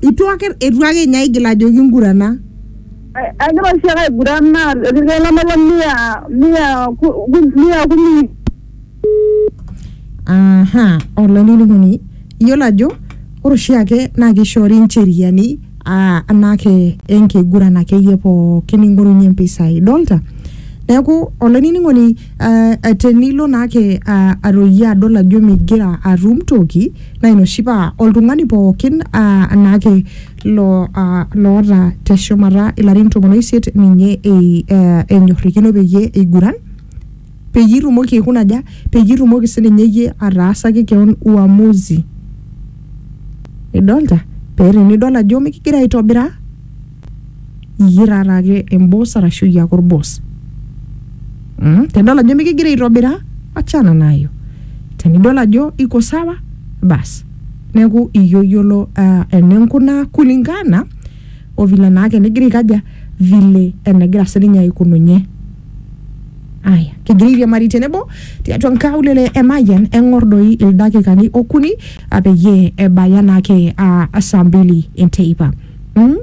Itu ake itu ake ninye aigil ajo kingurana. Egira oshi ake aiguran naa irkeek lamaua mia mia mia kumi. Aha, olainining'oni iyiolo ajo ore oshi ake naa kishoori incheriani aa anaake enkiguran akeyie pookin ning'orunye impisai. Idolta? Neeku olainining'oni Ah, eh, tenilo naake ah, aroyie adol ajo migira atum toki naa ina oshi paa oltung'ani pookin ah, naake lo, ah, loota teshumata ilarin tomon oisiet ninye ei, eh, enyorrikino peyie eiguran peyie itumoki aikuna aja peyie itumoki sininye iyie ataasaki keon uamuzi idolta pee tenidol ajo mikigira aitobira iyie taata ake emboss arashu iyie ake orboss mm? tenidol ajo mikigira aitobira achana nayo tenidol ajo iko sawa bas neeku iyie oyiolo uh, eninkunaa kulingana o vile naake nigira aikaja vile enegira sininye aikununye aya kigira airiamari tenebo tiatua nkaulele e Mayian eng'or doi ildakikani okuni ah, peyie ebaya naake ah, saa mbili enteipa Mm?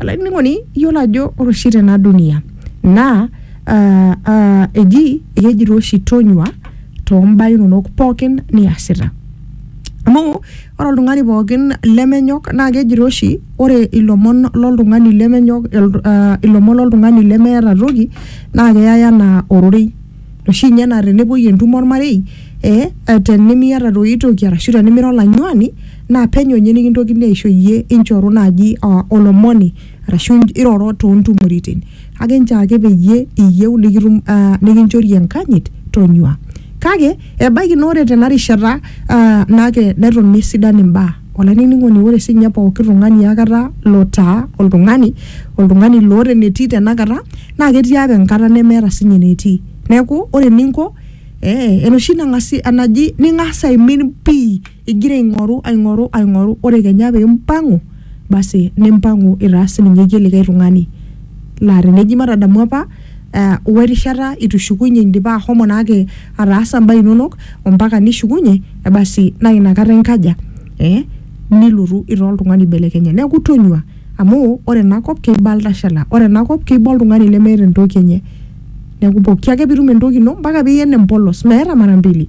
olainining'oni iyiolo ajo ore oshi tena dunia naa ah, ah, eji ekejito oshi tonyua tombaa inonok pookin niasita amu ore oltung'ani pookin lemenyok naa kejito oshi ore ilomon loltung'ani lemenyok el- ah, ilomon loltung'ani lemeeta toki naa keyai anaa ororei oshi inye naa tenepuoi entumo ormarei eh, eh, tenimiata doi toki arashu tenimira olanyuani naa penyo ninye nikintokini aisho iyie inchoru naaji ah, olomoni arashu in- iroro toontumoritin kake nchaake peyie iyieu nikitum ah, nikinchori enkanyit tonyua kake ebaiki naa ore tena rishata ah, nake neton mesidan imbaa olainining'oni ore sinye pooki tung'ani akata lotaa oltung'ani oltung'ani loota enetii tenakata naa ketii apa enkata nemeeta sinye enetii neeku ore eninko eh, enoshi nang'asi enaji ning'as aimin pii Igira aing'oru, aing'oru, aing'oru, ore kenya pee impang'u, basi nimpang'u itaa sii ninye iyie likae tung'ani. Laa teneji matadamu apa we rishata eitu ishukunye indipa ashomo naake ataasa imbaa inono ompaka nishukunye, basi naa ina kata inkaja? ee nilotu itaa oltung'ani oibelekenye. Neeku tonyua amu ore ena kop keiba iltashala, ore ena kop keiba oltung'ani lemeeta entoki enye. Neeku pooki ake piitum entoki ino mpaka piiyen empolos meeta mara mbili.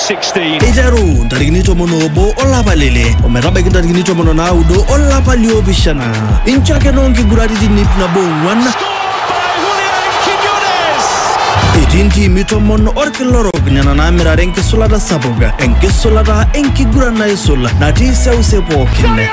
16. eiteru ntarikini tomon oobo olapa lele ometabaiki ntarikini tomon o naudo olapa liopishana inchake noo nkiguraritin ip nabo ong'uan etii ntiimi tomon orkila orok nena naamirare enkisulata sapuk enkisulata enkiguran naisul natii seuse pookin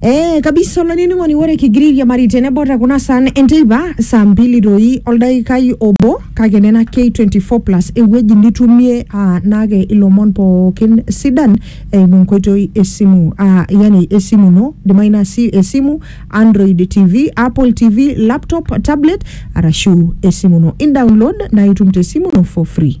Eh, kabisa olainining'oni ore kigira airiamari tenebo te kuna saan enteipa saa mbili doi oldaikai obo kake nena K24 plus ewueji nitumie ah, naake ilomon pookin sidan eimu enkoitoi esimu ah, yani esimu ino idimayu naa si esimu Android TV, Apple TV, laptop, tablet arashu esimu ino in download naa itum te simu ino for free.